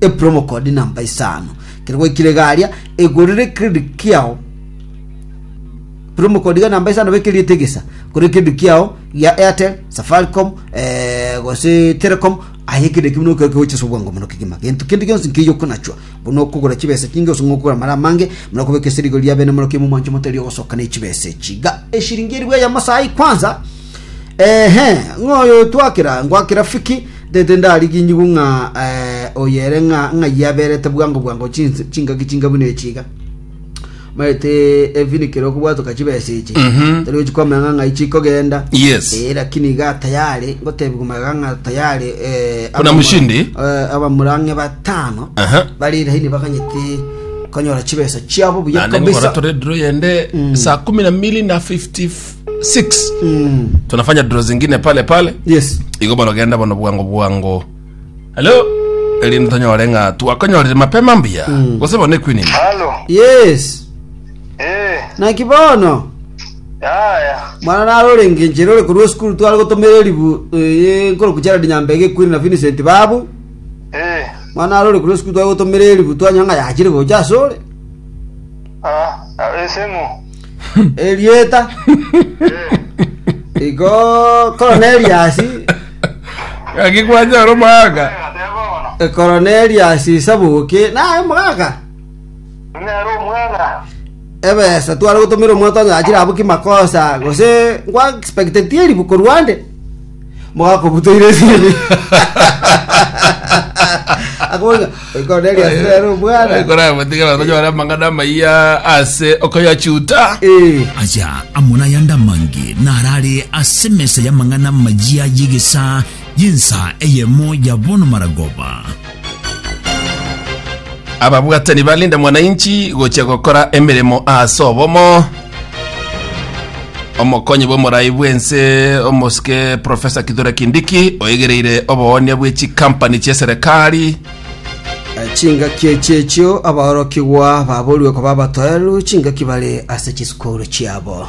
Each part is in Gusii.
epromo code namba isano kero gwaikire iga aria egorere credit kiao promo code iga namba isano beka eriete gesa gore credit kiao ya airtel safaricom eh, gose telecom aye kende ekio buna okegocha ase obwango mono kegima gento kende gionsi nkeiyo okonachwa buna okogora chibesa chinge ase ng'a okogora mara amange muna okobeka esirigo ria bene morokia mwa omwancho motari ogosoka na echibesa echi iga eshiringi eri bweyemo saai kwanza Eeh, ng'a oyo otwakera, ngwakera fiki, tete ndariginyigwe ng'a eh, oyo ere ng'a ng'ai aberete bwango bwango chins- chingaki chinga buna echi iga. Maete ebinikero okobwatoka chibesa echi. Mhm. Tari gochi kwamanya ng'a ng'ai chikogenda. Yes. Eh, lakini iga tayari, ngotebi komaga ng'a tayari eh, Kuna abamura- mushindi? eh, abamurang'e batano Aha. bari laini bakanyete konyora chibesa chiabo buya Naende ngokora kabisa. tore draw yende saa kumi na mbili na 50 6 tunafanya dro zingine pale pale yes igo barogenda bono bwango bwango halo erinde tonyore ng'a twakonyorire mapema mbuya gose bono ekwinini Halo. yes Eh. naki bono Yaya. mwana naro orenge inchere ore korwa esukuru tware gotomera eribu eh, nkoroku gerald nyambega ekwiri na vincent babu Eh. mwana naro ore korwa esukuru tware gotomera eribu twanyora ng'a yachire gocha ase ore Ah. Esemo. erieta igo koroneriasi Gaki kwanyora omogaka. koroneriasi sabuki naye omogaka Nero omwana. ebesa tware gotumira omwana twanyachire abwo kimakosa gose nkwa expectetie ribu korwande mogakobutoire esini akoboinga oikoneria sere omwana ekorabotiga abanto nyore amang'ana amaiya ase okoyachuta Eh, aya amona yande amange narare ase mesa y'amang'ana amayia y'egesa y'ensa eyemo ya bono maragoba Ababwatani ba Linda Mwananchi gochia gokora emeremo ase obomo. Omokonyi bw'omorai bw'ense omosike Profesa Kithure Kindiki oegereire oboonia bwe chikampani chi'eserekari. chingaki echi echio abaorokigwa baborwe koba abatoeru chingaki bare ase chisukuru chiabo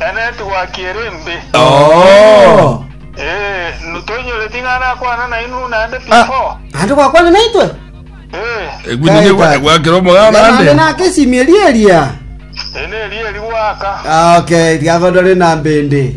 Enetigwa ki ere embe? Oo. Ee, n- toinyoreti ng'a nakwana nainwe naende Ah. before? Naende gwakwana naitwe? Ee, Egwinyi Kae, kae. gwakera omogana Naende ande. nake esimi eria eria. ene eria eri gwaka. Ah, okay, riagodore na mbende.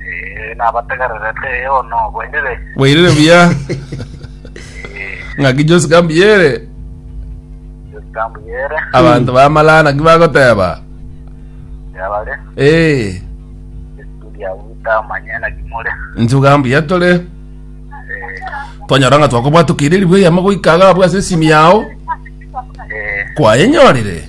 Eh, nabategererete eh, ono bwenire. Bwairire buya. Eh, Ng'aki Josi kambuyere. Jotambu yere, Abanto bamalana ki bagoteba. yabare, Eh, estudia uta amanye na kimore. inche bugambuya tore. Eh, Twanyora ng'a twakobwatukeire ribu eyemo goika agabwa ase esimi yao. eh, Kwayenyorire.